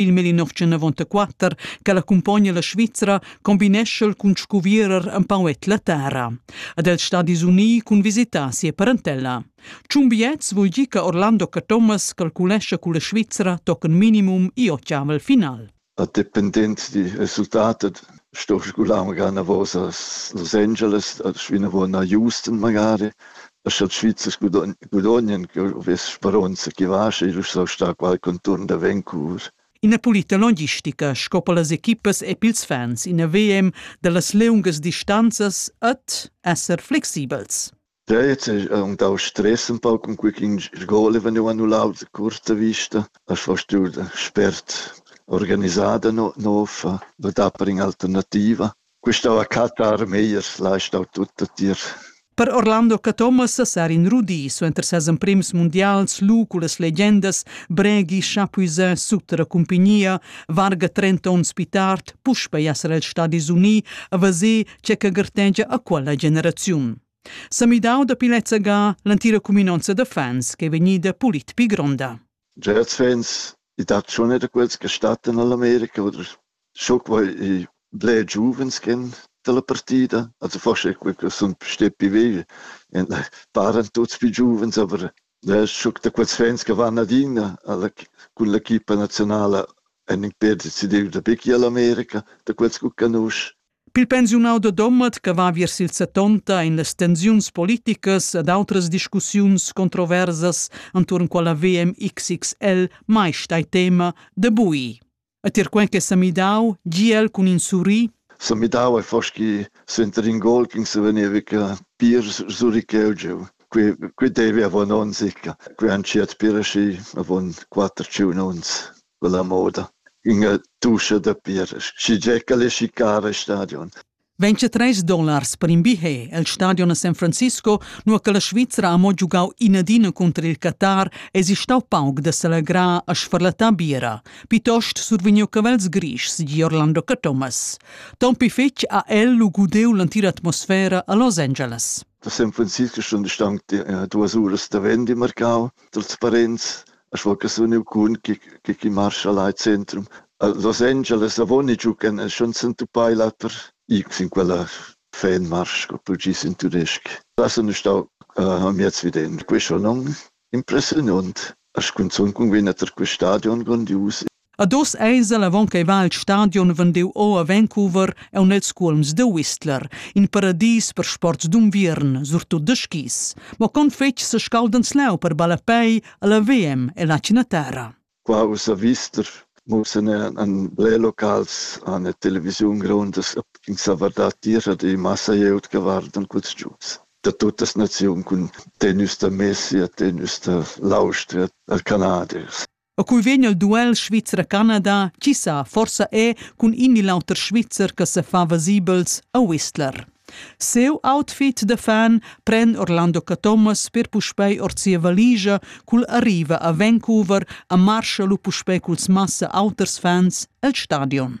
il 1994 che l'accumpogna la Svizra combinescha cun scuvierer empau la terra. Ad els Stadis Unii cun visitar sia parentella. Ciun biets vul dir che Orlando Cathomas calculescha con la Svizra tochen minimum i ochiavel final. A dependent di resultat sto sgular magari a vos als Los Angeles, a svinavo na Houston magari e sche Svizzers gudognan che vess speronza che vascha, io so star qual conturn da Vancouver. Ina pulita logistica sco per las equipas e pils fans, ina VM dallas leungas distanzas ed esser flexibels. Ja, jetzt ist und auch Stress ein paar, um quickin Goal, wenn du annulau die kurze Vista. Das hast du spät organisiert noch, noch da bring Alternative. Quista la catta armeias l'ha stau tutta tier. Per Orlando Cathomas sar in rudi suenter ses emprims mundials lu cullas legendas Bregi chapuisà sut la cumpagnia varga 30 onns pi tard puspei esser els Stadis Uni a vaser che che gartegia a quella generaziun. Sa midau da pilezza ga l'antira cuminonza da fans che è vegnida pulit pi gronda. Gerds vegns, i dat schon wieder quels Gestatten all'America, oder schon quei i bler giuvens gehen dalla partida, also forse è quei che sun stetti via. E paran tuts più giuvens, aber da schon da quels fans che vanno adina alla, cun l'equipa nazionala han in perdit decidiu da bicchi all'America, da quels che canusci. Pil pensiunau da Domat che va viers il settonta ein las tensiuns politicas ed outras discussiuns controversas entuorn quella VMXXL mai stai tema de bui. E tier quen che sa midau, giel cun in surri, se midava foschi center in gol che se veniva che pir suri cheu qui qui devi avon on sicca qui han ciat pir aschi avon quatter ciun ons quella moda ünga duscha da pir, schigiè ch'el es chicar al stadion. 23 dollars per in billet al stadion a San Francisco, nua che la Svizra ha mo giugau inadina cunter il Qatar, es stau pauc da s'allegrar a sfarlattar bira, piuttost survegniu cavels grischs di Orlando Cathomas. Tompi fetg ha el lu gudeu l'entira atmosfera a Los Angeles. Da San Francisco sun stanc eh, duas uras da vendi marcau, trasparenz, a scho che sun eu cun chi chi chi marcha là al centrum. A Los Angeles avoni giu ch'en en schon s'entuppai là per ir sin quella fanmarsch, co tu gis in tudesc. Là sun eu stau amiez viden. Quei schon non impressiunond. A scunzun cun vegnir tar quel stadion grondius A dos eis el avon ch'ei va il stadion vendiu o a Vancouver aun els cuolms de Whistler, in paradis per sports d'unviern, surtut de skis. Mo con fetg sescaldans leu per ballapei alla VM e la Cinatera. Qua ussa vister mussen an ble locals an der Television grondas in sa verdad tira die Masse jeut geworden kurz gius. Da tuttas Nationen kun tenus da Messi, tenus da Laustra, da Kanadiers. E cui vegn al duel Svizra-Canada, chi sa, forsa è cun in il auter Svizzer che se fa vasibels a Whistler. Seu outfit da fan pren Orlando Cathomas per puspei ord sia valigia cul arriva a Vancouver a marscha lu puspei culs massa auters fans el stadion.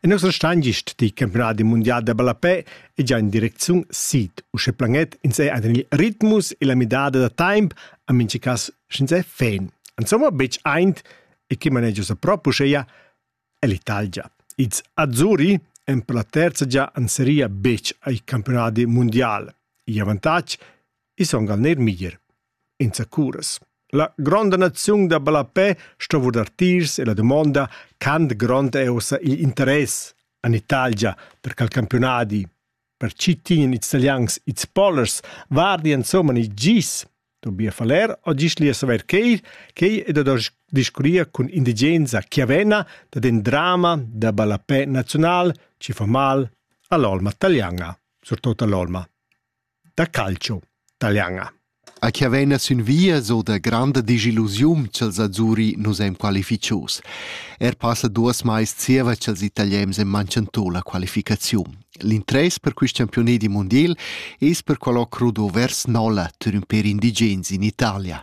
E nus stein gist die campionadi mundial da ballapè e già in direcziun sid, usche planet ins ei ein il ritmus e la midada da temp a minchi cas sch'ins ei fan. Insomma betg eint e chi manegia sa proprio uscheia è l'Italia. Ils Azzurri en per la terza già an seria betg ai campionadi mundial. Il avantatg I son gal neir miglier. Insacuras. La gronda naziun da ballapè sto vurdar tiers e la dumonda quant grond è ussa il interess en Italia per quel campionadi. Per chi tinen ils italians ils pollers vardi insomma i gis Tobias Faller o gis lia saver quei quei e da discuria cun indigenza chiavena da den drama da ballapè nazional ci fa mal all'olma taglianga surtut all'olma da calcio taliana. A chi havena sün via so da granda disillusiun ch'els azzuri nus eim qualificius. Er passa duos mais zieva ch'els italiens en manchentò la qualificaziun. L'interess per quist campione di mondiel es per qualò crudo vers Nola, tur ün per indigens in Italia.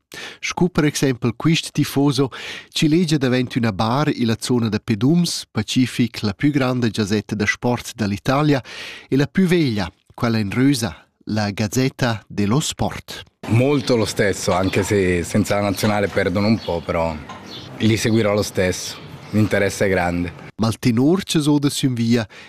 Scu per exempel quist tifoso chi legia davent üna bar illa zona da pedums, Pacific, la pü granda giazetta da sport da l'Italia e la pü veglia, quella in rösa, la Gazzetta dello Sport. Molto lo stesso, anche se senza la nazionale perdono un po', però li seguirò lo stesso. L'interesse è grande. Ma il tenor che so da sün via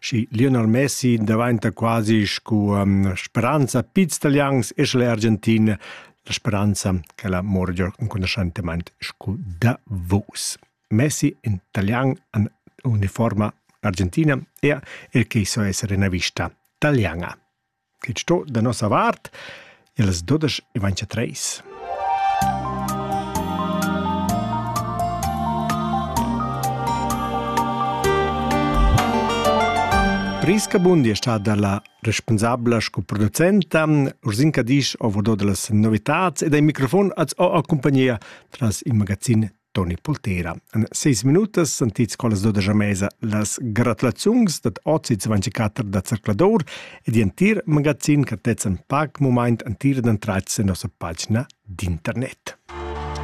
Schi Lionel Messi daventa quasi scu um, speranza piz italians e sche l'Argentina la speranza che la morgio inconoscentemente scu da vos. Messi in italian an uniforma argentina e er che so essere una vista italiana. Quei sto da nossa vart ils dudesch e ventotreis. Priska Bundi è stata la responsabla sco producenta, Ursinka Disch ha vodo delle novità ed ai microfon als ho accompagnia tras il magazin Toni Pultera. En seis minutas sentits collas dodesch a mesa las gratulaziuns dad ozi 24 da Zercladur e di entir magazin che tezzan pac moment entir dentrat sen nossa pagina d'internet.